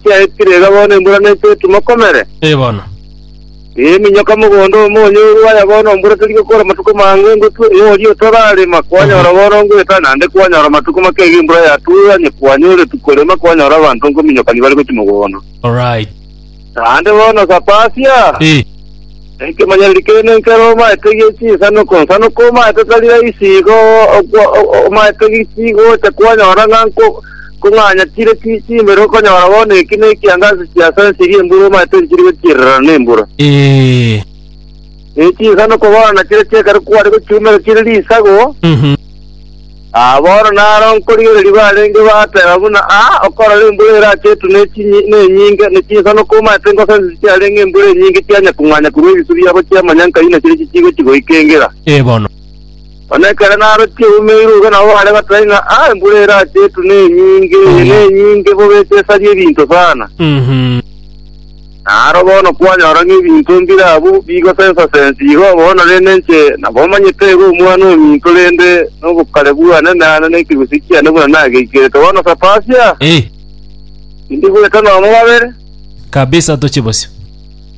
Chiaetire iga bono embura neche etimokomere. Ee bono. Ee eminyoka mogondo omo onyorwe aya bono embura teri gokora amatuko mange ngotwe ee oria otararema kwanyora bono ngoeta nande kwanyora amatuko make iga embura yatue onye kwanyoretwe korema kwanyora abanto nkominyokani bare gochia mogondo. Alright. Naende bono Sapasia. Ee. Ekemanyererio keene nkere omaete gie chinsanuku nsanuku omaete tari raisi igo okwa- o- o- omaete giki gocha kwanyora ng'a nko- nkong'anya chire chi- chimbere okonyora bono eki ne ekiangaasi chia sensirie embura omaete nchiri gochirerana nembura. Ee. Ne chinsanuku bono nachire chi'ekero kware gochiumera chire risago, Mhm. Aa bono naro nkorigereria barenge baateba buna aa okorora embura ere ase etune chinyi nenyinge, ne chinsano komaete ngosa ense chiarenge embura enyinge chianya kong'anya korwa ebisu biabo chiamanyanka inwe chire chichigochi goika engera. Ee bono. Onye ekero naro chieumeirwe igo nabo bare goteba ng'a aa embura ere ase etune enyinge, eye nenyinge bobe esesaria ebinto sana. Uhum. Na aro bono kwanyora ng'a ebinto mbire abwo bigosensa sensi igo bono rende inche nabomanyete igo Omwana ominto rende nobokare bwane nane ne ekegusii kiane buna nageikerete bono Sapasia, Eh, tindi goeta nomo babere. kabisa toche bosio.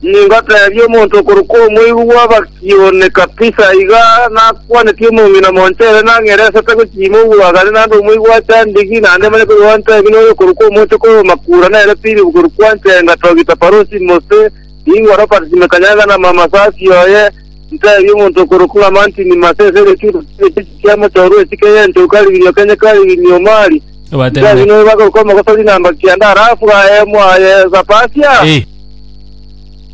Ningotebie omonto okorokwa omoigu bw'abakiri. Iyone kabisa, iga nakwaneti omong'ina monchere nang'ere ase atagochiima obwagani naende omoigwa achandigi, naende manye koria gwanchae ng'ina oyo okorokwa omoche kore omakura nere Philip korwa kwanchae ngatogita Parosi Mose, nigo Robert Simekanyanga na mama Safi oye, ntebia omonto okorokwa ng'a Martin Mase ase egechuutu kende chechio kia mochorwa esike y'encheu Kariginia Okenye Kariginia Omari, Obatebia ntebia noyo bakorokwa omogosori namba kianda, alafu aye mwaye Sapasia. Eh.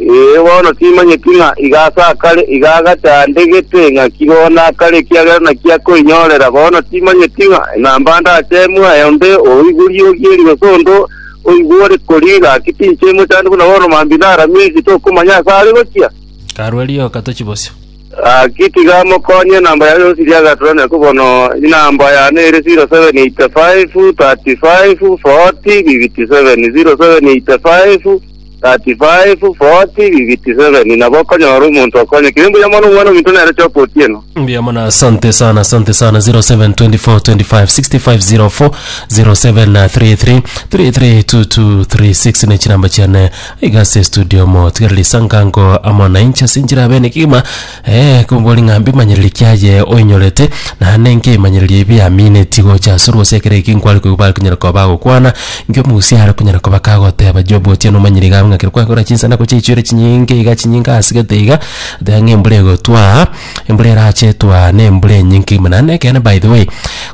Ee, bono timanyeti ng'a iga ase akare, iga agati aande gete, ng'a ki bono akare, ekiagera naki akoinyorera. Bono timanyeti ng'a enamba ndachemwe aye onde oigwe riogi eri gose onde oigwe ore koria, gaki tinchemwe chande buna bono mambia naramie eri, tokomanya ase are gochia. Karue rioka tochie bosio. Gaki tiga mokonye enamba yaye osirie agaturania ko bono enamba yane ere 0785 35 40 57, 0785 35, 40, 57 Nabo okonyora omonto okonyekire mbuya mono Omwana ominto nere choka otieno. Mbuya mono asante sana asante sana 0724256504 0733332236 ne chinamba chiane igase studio mo tigareri sangango amo nainche sinchira bene kigima Ee, kombori ng'a mbimanyereri kiaye oinyorete, na nenki ebimanyererio ebi biamineti gocha asore gose ekero eki nkware koigwa bare konyara koba bagokwana, inki omogusia are konyara koba kagoteba Jobu otieno omanyire iga abwe ng'a ekero kwakora chinsana gochia echiore chinyinge iga chinyinge ase gete iga, oteba ng'a embura egotwaa, embura erache etwaa na embura enyinke buna. Naende ekeene by the way,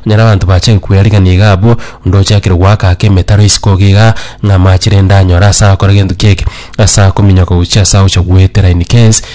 onyore abanto bachake kobua erigena iga abwo, onde ochakire goaka ake emetaro isiko iga igaa, ng'a amache rende anyore ase agokora gento ki'eke, ase akominyoka gochia ase agocha goetera in case.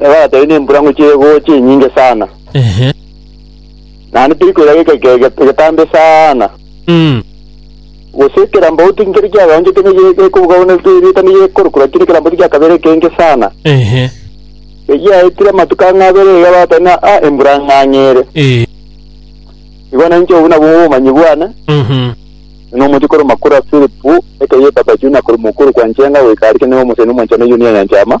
Nabo bagateba, Inde embura ngochia egoocha enyinge sana, Ehe. naende teri koira geka eke ge- getambe sana. Mm. Gose ekerambau tinkeri kiagaonchete ne ge- gekobuga buna erieta nigekorokwa, lakini ekerambau tigiakabeire ekenge sana. Ehe. Egiaetire amatuko ang'e abere iga bagateba, ng'a ah, embura ng'ang'ere. Eh. Igo nainche obwo nabwo obomanyi bwane, Mhm. na omochie korwa makuru a Filipu, ekegita Bajuna korwa mokuru kwa Njenga goika Arike, nigo omosani omwanchani o Yunia nyanchama.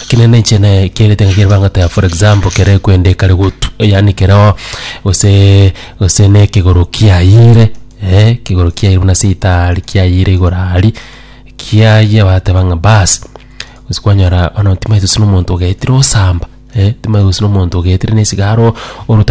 Lakini ne inche ne kiagete ngaki ere bang'ata ya for example kere kwende kare gotu yaani kereo gose gose ne kegoro kiayire kegoro kiayire buna ase itaari kiayire igoro aria kiayia bateba ng'a baasi gose kwanyora bono timanyeti gose na omonto ogetire osamba timanyeti gose na omonto ogetire na esigara orota gochia.